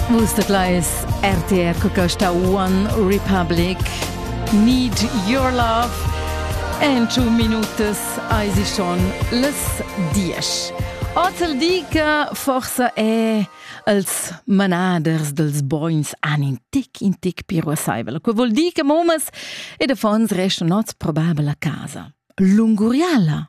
Vus dat leis RTR Cocosta One Republic Need Your Love en two minutas eisi schon les diesch. Ozel di che forse è els manaders dels boins an in tic in tic piruasaivel. Que vuol dir che momas e de fons restano nots probabile a casa. Lunguriala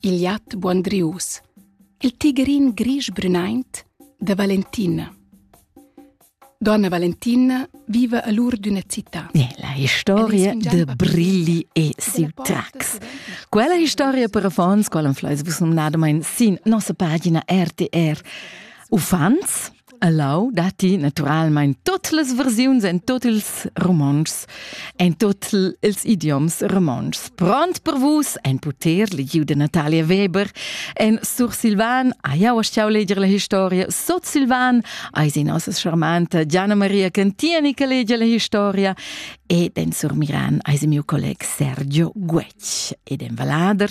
il iat buondrius, il tigrin grisch-brünaint da Valentina. Donna Valentina viva a l'ur d'üna città. La historia de Brilli e Siltrax. Quella historia per affons, qual am fleis vus nomnadamain sin nossa pagina RTR. Uffants A Lau datti naturalmein tut las versiuns en tut ils romontschs, en tut ils idioms romontschs. Pront per vus en puter legiu de Natalia Weber, en sursilvan ai au stiau leger la historia, sotsilvan ai si nossa charmanta Gianna Maria Cantiani che legia la historia ed en surmiran ai si mio colleg Sergio Guec ed en Valader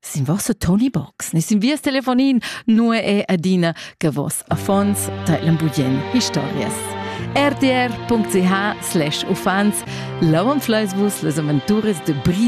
Sin vossa Tony Box, ne sin vias telefonin, nu è adina che vos affons tailen bugien historias. rtr.ch slash uffants lavan fleisvus les aventuras de Brise